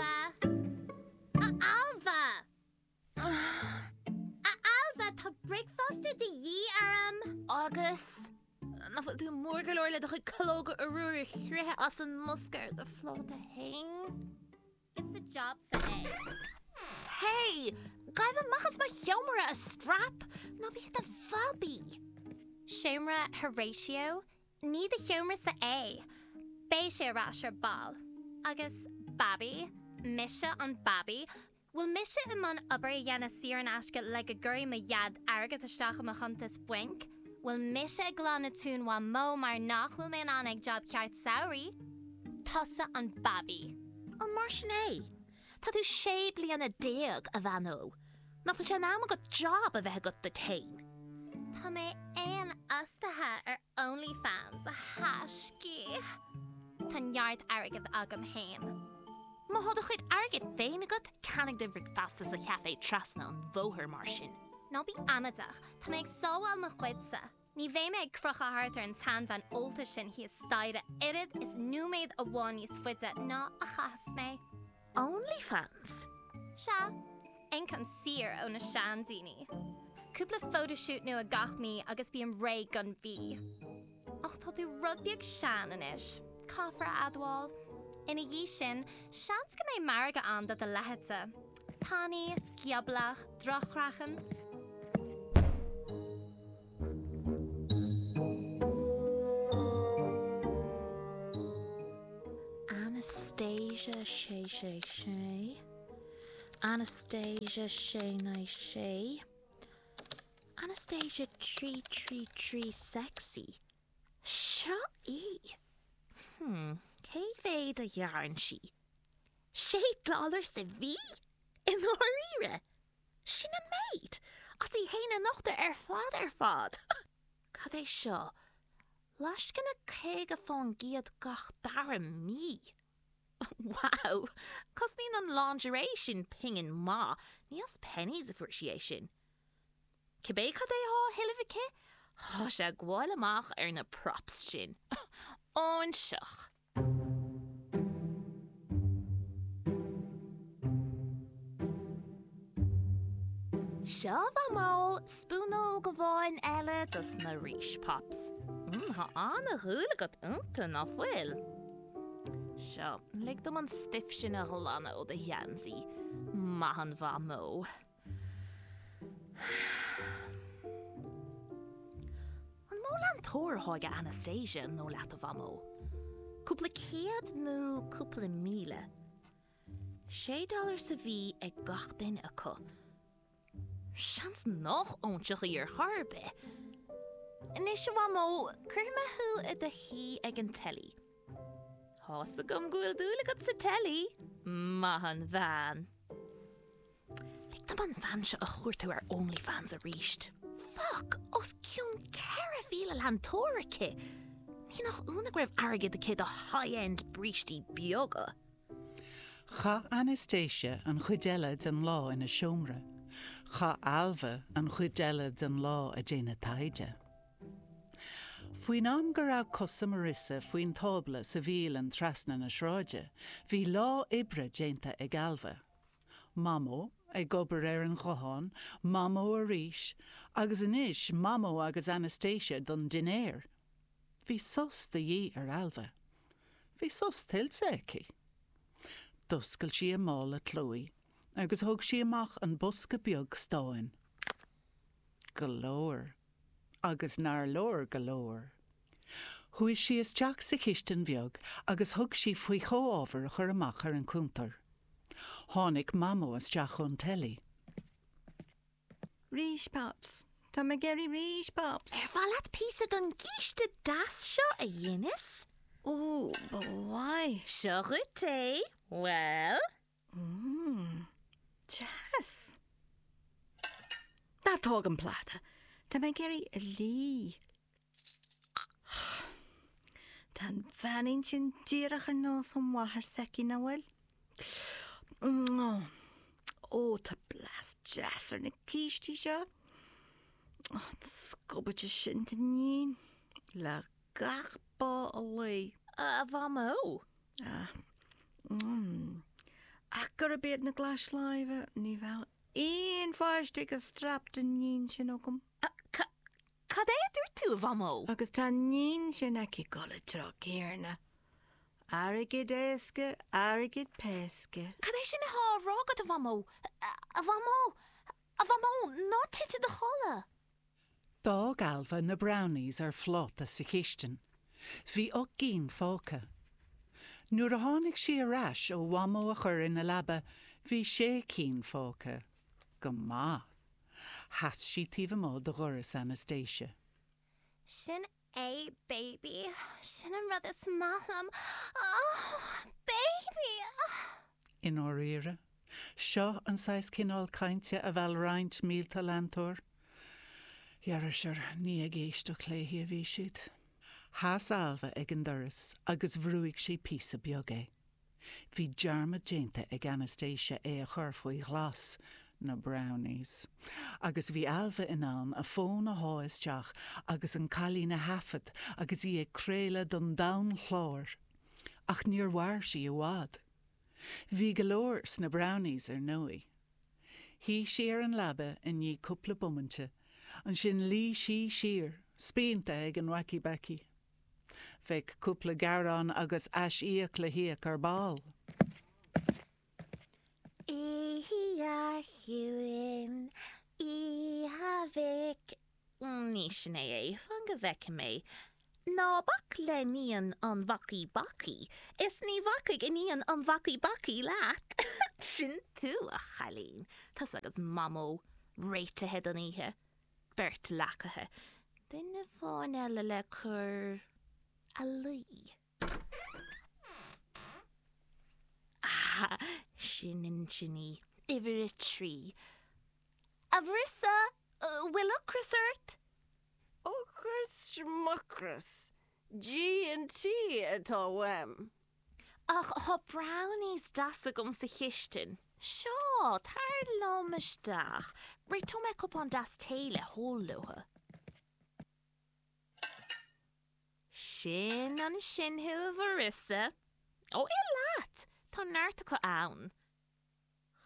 Ailbhe! A Ailbhe! A Ailbhe, tá bricfeasta de dhíth orm! Agus nach bhfuil tú mór go leor le do chuid calóga arbhair a chroitheadh as an mbosca ar do phláta fhéin? Is do jab-sa é. Hey! Gabh amach as mo sheomra, a strap! Ná bí i do bhabaí! Seomra Horatio Ní do sheomra-sa é. Beidh sé ar ais ar ball. Agus Babaí? Mise an Babaí? Bhfuil mise i mbun obair a dhéanamh saor in aisce le go gcuirfidh mo dheaid airgead isteach i mo chuntas bainc? Bhfuil mise ag glanadh tóin Mhamó mar nach bhfuil mé in ann ag job ceart samhraidh? Tusa an Babaí. An mar sin é? Tá tú sé bliana déag, a bhean ó, nach bhfuil sé in am agat job a bheith agat duit fhéin? Tá mé féinfhostaithe ar Onlyfans, a thaiscí. Tá neart airgead agam fhéin. Má thá do chuid airgid féin agat, ceannaigh do bhricfeasta sa chafé trasna an bhóthair mar sin. Ná bí amaideach, tá mé ag sábháil mo chuidse. Ní bheidh mé ag crochadh thart ar an tseanbhean ólta sin thíos staighre oiread is nóiméad amháin níos faide ná a chaithfeas mé. Onlyfans? Sea. Ioncam saor ó na seandaoine. Cúpla photoshoot nua gach mí agus bím réidh don mhí. Ach tá tú rud beag sean anois, caithfear a admháil. Ina dhiaidh sin, seans go mbeidh margadh ann do do leithéidse. tanaí, gioblach, droch-chraiceann. Anastasia Sé Sé Sé Anastasia Sé Naoi Sé Anastasia Trí Trí Trí Sexy Seo í! Hm, cé mhéad a ghearrann sí? Sé dollar sa mhí? I ndáiríre? Sin an méid? As í fhéin a nochtadh ar fad ar fad! Cad é seo? Lascaine caoga fán gcéad gach dara mí? Wow! Cosnaíonn an lingerie sin pingin maith, ní as Penneys a fuair sí é sin. Cibé cad é thá á thuilleamh aici, thá sé ag gabháil amach ar na props sin. Óinseach! Seo a Mhamó, spúnóg amháin eile dos na Rís Pops. Mmm, thá an-dhúil agat ionnta, ná fuil? Seo, lig dom an stuif sin a ghlanadh ó do gheansaí. Maith an Mhamó. An mó leantóir atá ag Anastasia an dóigh leat a Mhamó? Cúpla céad nó cúpla míle? Sé dollar sa mhí ag gach duine acu. Seans nach óinseach í ar chor ar bith. Anois a Mhamó, cuirfidh mé thú i do shuí ag an teilí. Tá a fhios agam go bhfuil dúil agat sa teilí, maith an bhean. Lig dom an bhean seo a chuartú ar OnlyFans aríst. Fuck! Os cionn 4,000 leantóir aici! Ní nach ionadh go raibh airgead aici do high-end brístí beaga. Chaith Anastasia an chuid eile den lá ina seomra. Chaith Ailbhe an chuid eile den lá ag déanamh taighde. Faoin am go raibh cosa Marissa faoin tábla sa bhialann trasna na sráide, bhí lá oibre déanta ag Ailbhe. Mamó, ag obair ar an ghuthán, Mamó arís, agus anois Mamó agus Anastasia don dinnéar. Bhí sos de dhíth ar Ailbhe. Bhí sos tuillte aici. D'oscail sí a mála Chloé agus thóg sí amach an bosca beag stáin. Go leor. agus nár leor go leor. Chuaidh sí isteach sa chistin bheag agus thug sí faoi chomhábhair a chur amach ar an cuntar. Tháinic Mamó isteach ón teilí. Rís Pops. Tá mé ag iarraidh rís Pops. Ar mhaith leat píosa don gcíste deas seo a dheineas? Ó, ba mhaith. Seo dhuit é. Bhuel? Mmm. Deas. Ná tóg an pláta. Tá mé ag iarraidh é a lí. Tá an bheainín sin díreach ar nós an mháthair s'aici, ná fuil? Ó, tá blas deas ar na cístí seo. An scubaid sin d'iníon le gach bá a luí. A Mhamó, Ach gurb iad na glais láimhe, ní bheadh aon pháiste ag an straip d'iníon sin agam. Cad é a dúirt tú, a Mhamó? Agus tá an iníon sin aici ag dul an treo céanna. Airgead éasca, airgead péasca. Cad é sin atá á rá agat, a Mhamó? A Mhamó! A Mhamó! Ná tit i do chodladh! D'fhág Ailbhe na brownies ar phláta sa chistin. Bhí ocht gcinn fágtha. Nuair a tháinig sí ar ais ó Mhamó a chur ina leaba bhí sé cinn fágtha. Go maith. Sheas sí taobh amuigh de dhoras Anastasia. Sin A, baby, sin an rud is maith liom, oh, baby, oh. I ndáiríre? Seo an saghas céanna cainte a mheall roinnt mílte leantóir? Dhera sure, ní ag éisteacht léi a bhí siad. Sheas Ailbhe ag an doras agus bhrúigh sí píosa beag é. Bhí dearmad déanta ag Anastasia é a chur faoi ghlas, na brownies, agus bhí Ailbhe in ann a fón a shá isteach agus an cailín a thaifead agus í ag craoladh don domhan chláir. Ach níor mhair sí i bhfad. Bhí go leor sna brownies ar ndóigh. Shuigh sí ar an leaba i ndiaidh cúpla bomainte, ansin luigh sí siar, spíonta ag an wacky-backy. Bheadh cúpla gearán agus ais-íoc le híoc ar ball. Iá chiúin, Iá mhic, ní sin é é, fan go bhfeice mé. Ná bac le hiníon an bhacaí bacaí, is ní bhacfaidh iníon an bhacaí bacaí leat. Sin tú, a chailín. Tusa agus Mamó réitithe don oíche. beirt leacaithe, duine amháin eile le cur ina luí. Ah, sin ansin í, uimhir a trí. A Mharissa, bhfuil ocras ort? Ocras, schmucras, G&T atá uaim. Ach thá brownies deas agam sa chistin. Seo, tar liom isteach. Réiteoidh mé cupán deas tae le hól leobhtha. Sin ansin thú, a Mharissa. Ó, ith leat! Tá neart acu ann.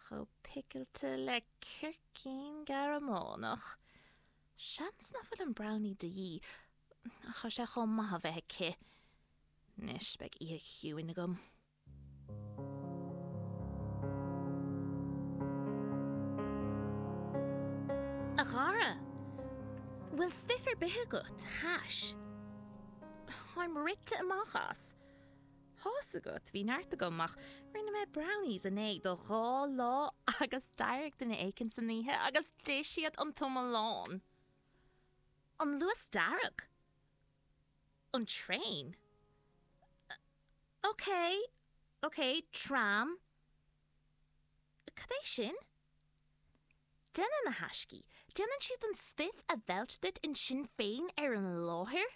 chomh picilte le circín Gearmánach. Seans nach bhfuil an brownie de dhíth, ach tá sé chomh maith a bheith aici. Anois beidh oíche chiúin agam. A chara, bhfuil stuif ar bith agat? Hash? Táim rite amach as. Tá's agat, bhí neart agam, ach rinne mé brownies inné do dhá lá agus d'éirigh duine éicint san oíche agus d'ith siad an t-iomlán! An Luas Dearg? An traein? OK, OK, tram? Cad é sin? Déanann na haistí, déanann siad an stuif a mheilt duit ansin féin ar an láthair?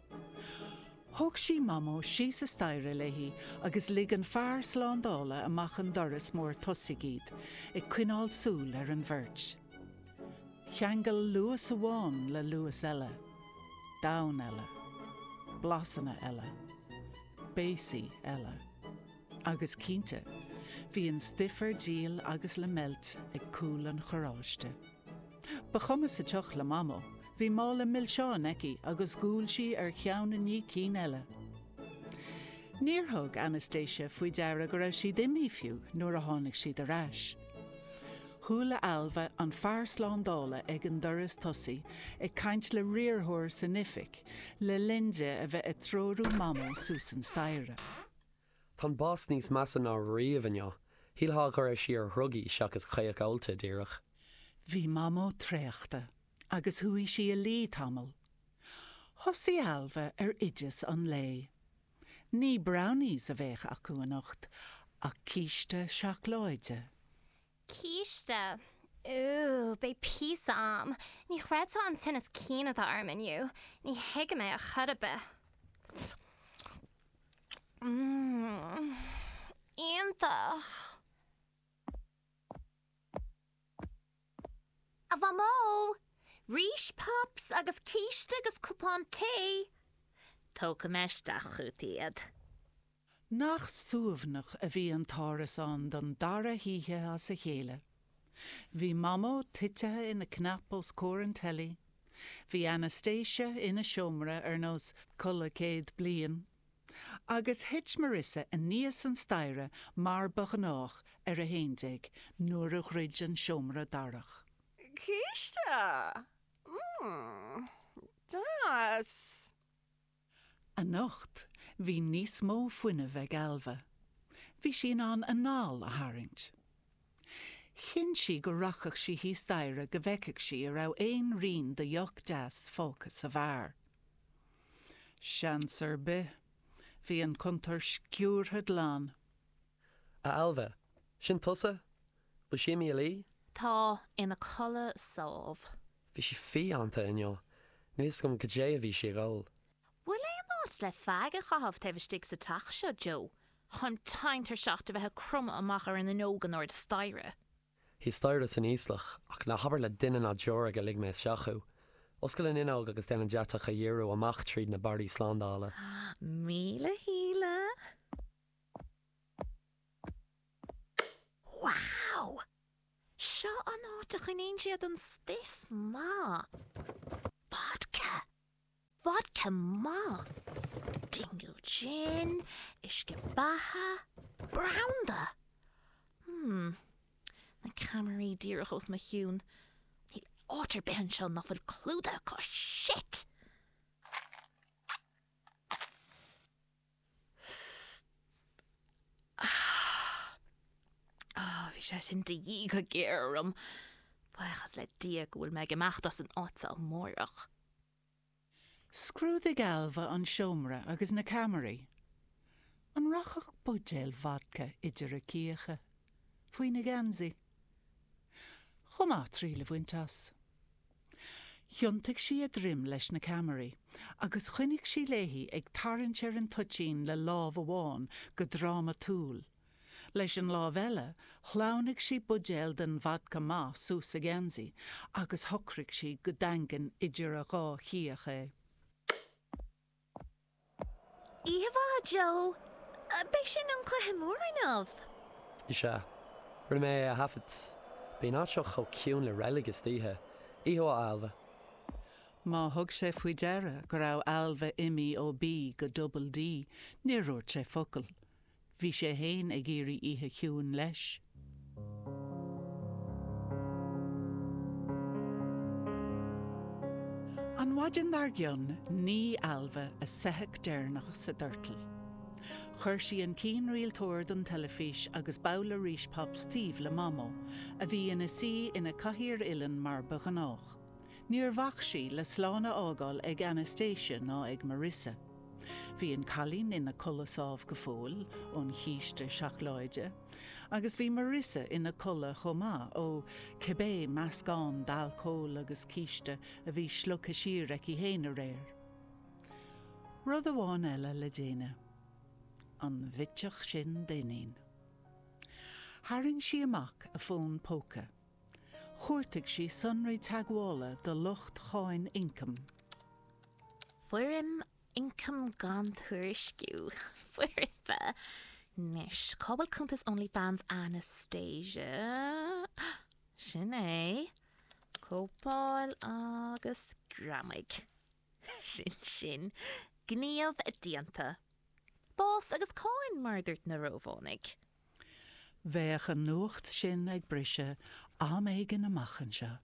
Thóg sí Mamó síos an staighre léi agus lig an fear slándála amach an doras mór tosaigh iad, ag coinneáil súil ar an bheirt. Cheangail Luas amháin le Luas eile. Domhan eile. Blasanna eile. Béasaí eile. Agus cinnte, bhí an stuif ar díol agus le meilt ag cúl an charráiste. Ba chuma sa tsioc le Mamó. Bhí mála milseáin aici agus dhiúl sí ar cheann i ndiaidh cinn eile. Níor thug Anastasia faoi deara go raibh siad imithe fiú nuair a tháinig siad ar ais. Chuala Ailbhe an fear slándála ag an doras tosaigh ag caint le riarthóir san oifig le linn di a bheith ag treorú Mamó suas an staighre. Tá an boss níos measa ná riamh inniu. Shílfeá go raibh sí ar dhrugaí seachas caoch ólta, díreach. Bhí Mamó traochta agus chuaigh sí a luí tamall. Thosaigh Ailbhe ar oideas an lae. Ní brownies a bheadh acu anocht ach císte seacláide. Císte. Ooh, beidh píosa a'm. Ní chreidfeá an tinneas cinn atá orm inniu. Ní thuigim é a chor ar bith. Mmm. Iontach. A Mhamó! Rís pops agus císte agus cupán tae. Tógfaidh mé isteach chugat iad. Nach suaimhneach a bhí an t-árasán don dara hoíche as a chéile. Bhí Mamó titithe ina cnap os comhair an teilí, bhí Anastasia ina seomra ar nós codladh céad bliain, agus thit Marissa aníos an staighre mar ba ghnách ar a haon déag nuair a dhruid an seomra darach. Císte! Mmm. Deas! Anocht bhí níos mó fuinnimh ag Ailbhe. Bhí sí in ann anál a tharraingt. Chinn sí go rachadh sí thíos staighre go bhfeicfeadh sí an raibh aon rian de dheoch deas fágtha sa bheár. Seans ar bith. Bhí an cuntar sciúrtha glan. A Ailbhe! Sin tusa? Bhfuil sí imithe a luí? Tá ina codladh sámh. Bhí sí fiánta inniu. Níl fhios agam goidé a bhí sí ag ól. Bhfuil aon áit le feaig a chaitheamh taobh istigh sa teach seo, Joe, táim tinn tuirseach de bheith ag cromadh amach ar an fhuinneog in airde staighre? Thíos staighre san íoslach, ach ná habair le duine ná deoraí gur lig mé isteach thú. Oscail an fhuinneog agus déan an deatach a dhíriú amach tríd na barraí slándála. Míle shíle! Wow! Seo an áit a choinníonn siad an stuif maith. Vodka! Vodka maith! Dingle Gin, uisce beatha, branda! Hmm. Na ceamaraí díreach os mo chionn. Níl áit ar bith anseo nach bhfuil clúdaithe acu. Shit! Bhí sé sin de dhíth go géar orm. Buíochas le Dia go bhfuil mé ag imeacht as an áit seo amárach. Scrúdaigh Ailbhe an seomra agus na ceamaraí. An rachfadh buidéal vodka idir a cíocha? Faoina geansaí? Chomh maith triail a bhaint as. Thiontaigh sí a droim leis na ceamaraí agus choinnigh sí léi ag tarraingt ar an toitín le lámh amháin go drámatúil. Leis an lámh eile shleamhnaigh sí buidéal den vodka mhaith suas a geansaí agus shocraigh sí go daingean idir a dhá chíoch é. Íomhá, Joe, B'in sin ón cluiche mór inniu. Is ea. Rinne mé é a thaifead. Bíonn an áit seo chomh ciúin le reilig istoíche. Íomhá, Ailbhe. Má thug sé faoi deara go raibh Ailbhe imithe ó B go Double D, níor dhúirt sé focal. Bhí sé fhéin ag iarraidh oíche chiúin leis. An mhaidin dar gcionn nigh Ailbhe a soitheach deireanach sa doirteal. Chuir sí an cianrialtóir don teilifís agus babhla Rice Pops taobh le Mamó, a bhí ina suí ina cathaoir uilleann mar ba ghnách. Níor bhac sí le slán a fhágáil ag Anastasia ná ag Marissa. Bhí an cailín ina codladh sámh go fóill ón chíste seacláide, agus bhí Marissa ina codladh chomh maith, ó, cibé meascán d'alcól agus císte a bhí slogtha siar aici fhéin aréir. Rud amháin eile le déanamh. An bhitseach sin d'Eoinín. Tharraing sí amach a fón póca. Chuartaigh sí sonraí teagmhála do lucht Cháin Ioncaim. Foirm Ioncam Gan Tuairisciú, foirfe, Anois, cá bhfuil cuntas OnlyFans Anastasia? Sin é. Cóipeáil agus greamaigh. Sin sin. Gníomh déanta. Bás agus cáin, mar a dúirt na Rómhánaigh. Bheadh an nuacht sin ag briseadh am éigin amach anseo,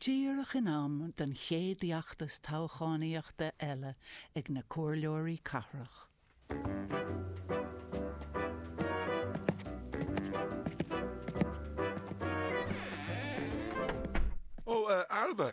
díreach in am don chéad fheachtas toghchánaíochta eile ag na comhairleoirí cathrach. Ó, a Ailbhe,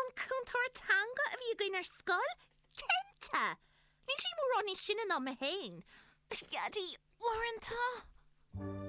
An cúntóir teanga a bhí againn ar scoil? Cinnte! Níl sí mórán níos sine ná mé féin. Ar Dhaidí uaireanta.